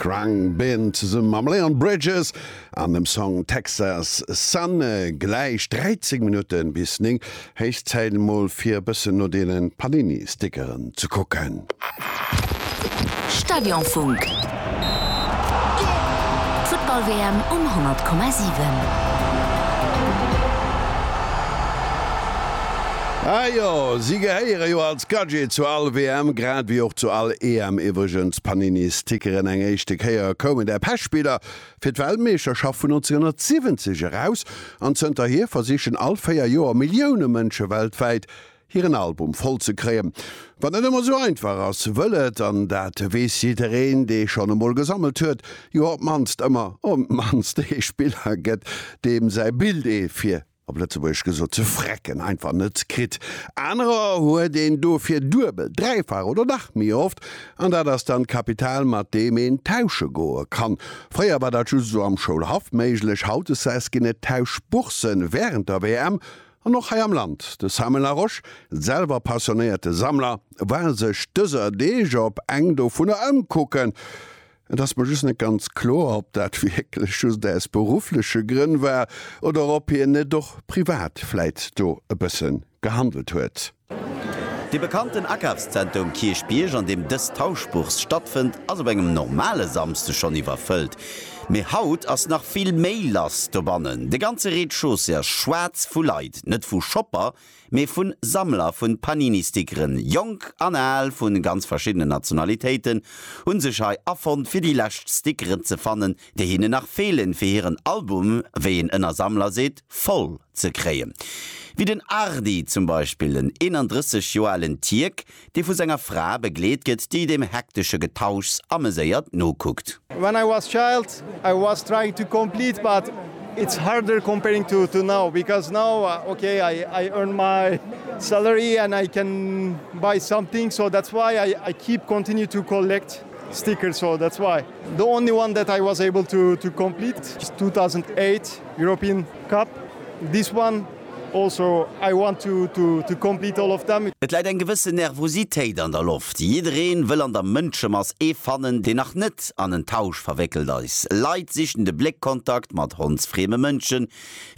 Khruangbin zesumme mam Leon Bridges an dem Song Texas Sun. Gläich 13 Minutte bis 9, héich Zäit emol fir e bëssen no deene Panini Stickeren ze kucken. Stadionfunk. D'Futtball WM um 100,7. Ah jo, si gehéiere jo als. D'Gadgete zu all WM, grad wéi och zu all EM iwwregens, Panini Stickeren, eng éischte Kéier koumen der Pechbidder fir d'Weltmeeschterschaft vun 1970 eraus an zënterhier versichen all 4 Joer Millioune Mënsche weltwäit hiren Album voll ze kréien. Wat net ëmmer sou einfach ass, wëll et, an dat weess jiddereen dee schonn emol gesammelt huet, jo op d'mannst ëmmer op d'mannst ee Spiller gëtt deem säi Bild ee fir op Lëtzebuergesch gesot, ze frecken, einfach net kritt. Anerer huet een dofir duebel, dräifach oder nach méi oft. An dat ass dann d'Kapital, mat deem een tausche goe kann. Fréier war dat just esou am Schoulhaff méiglech. Hautdesdäis ginn et Tauschbourssen wärend der WM an och hei am Land. De Samuel Laroche, selwer passionéierte Sammler, war sech dëser Deeg op eng dovunner ëmkucken. Et ass mer just net ganz kloer, ob dat wierklech just aus beruffleche Grënn war oder ob hien net och privat vläit do e bësse gehandelt huet. De bekannten Akafszenter um Kierchbierg, an deem dës Tauschbourse stattfënnt, ass op engem normale Samsde schonn iwwerfëllt. Mee haut ass nach vill méi lass dobannen. De ganze Rez-de-chaussée ass schwaarz vu Leit, net vu Shopper, mee vun Sammler vun Panini-Stickeren. Jonk an Al vun ganz verschiddenen Nationalitéiten hunn sech hei afonnt fir déi lescht Stickeren ze fannen, déi hinnen nach feelen fir hiren Album, wéi een ënner Sammler seet, voll ze kréien. Wéi den Ardi zum Beispill, en 31 Joer alen Tierk, dee vu senger Fra begleet gëtt, déi dem hektesche Getauschs ameséiert nokuckt. When I was child I was trying to complete but it's harder comparing to to now because now okay I I earn my salary and I can buy something so that's why I I keep continue to collect stickers so that's why the only one that I was able to to complete is 2008 European Cup this one Et läit eng gewëssen Nervositéit an der Loft. Jiddereen wëll an der Mënschemass ee fannen, deen nach net an en Tausch verwéckelt eis. Leit sichen de Bléckkontakt mat hondsfrieme Mënschen.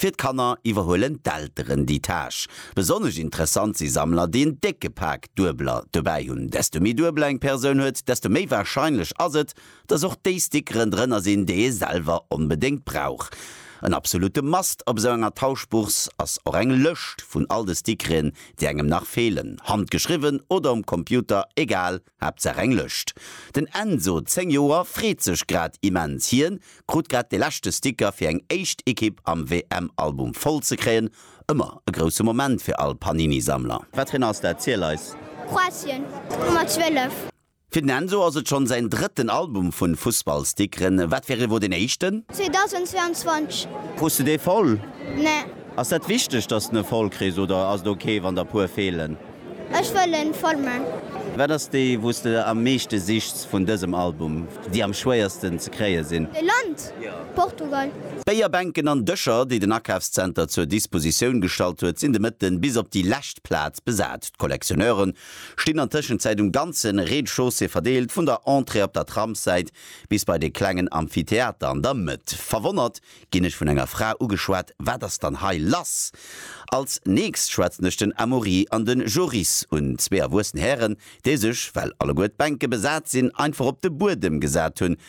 Fir d'Kanner iwwerhuelen d'Elteren déi Tâche. Besonnesch interessant si Sammler, déi en décke Pak Duebeler dobäi hunn. Desto méi Duebler eng Persoun huet, desto méi warscheinlech ass et, dass och déi Stickeren drënner sinn, déi ee selwer onbedéngt brauch. En absolute Must op esou enger Tauschbourse ass och eng Lëscht vun all de Stickereen, déi engem nach feelen, handgeschriwwen oder um Computer, egal, Haaptsaach eng Lëscht. Den Enzo, 10 Joer, freet sech grad immens. Hien krut grad de leschte Sticker fir eng éischt Ekipp am WM-Album voll ze kréien. Ëmmer e grousse Moment fir all Panini-Sammler. Wat fir en ass dat? Ziel eis! Kroatien, d'Nummer 12. Fir den Enzo ass et schonn säin drëtten Album vu Fussballstickeren. Wat fir ee wor deen éischten? 2022. Krus de dee voll? Nee. Ass dat wichteg, dass de e voll kriss oder ass et ok, wann der e puer feelen? Ech wëll e voll man. Wat ass déi, wou s de am meeschte sichts vun dësem Album, déi am schwéiersten ze kréie sinn? E Land? Portugal. D'Béierbänken an Dëscher, déi den Akafszenter zur Dispositioun gestallt huet, sinn de Mëtten bis op déi lescht Plaz besat. D'Collectionneuren stinn an Tëschenzäit um ganze Rez-de-chaussée verdeelt, vun der Entrée op der Tramssäit bis bei de klengen Amphitheater an der Mëtt. Verwonnert ginn ech vun enger Fra ugeschwat, Wat ass dann hei lass? Als nächst schwätzen ech den Amaury an de Joris un, zwee erwuessen Hären, déi sech, well alleguer d'Bänke besat sinn, einfach op de Buedem gesat hunn,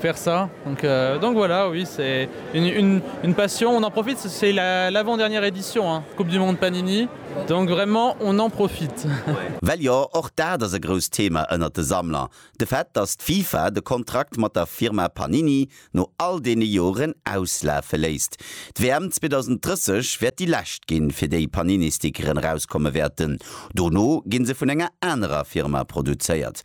faire ça donc donc voilà oui c'est une une une passion on en profite c'est la l'avant dernière édition hein coupe du monde panini donc vraiment on en profite. Well jo, och dat ass e grousst Thema ënnert de Sammler, de Fait, dass d'FIFA de Kontrakt mat der Firma Panini no all deene Joren auslafe léisst. D'WM 2030 wäert déi lescht ginn, fir déi Panini-Stickeren erauskomme wäerten. Dono gi se vun enger anerer Firma produzéiert.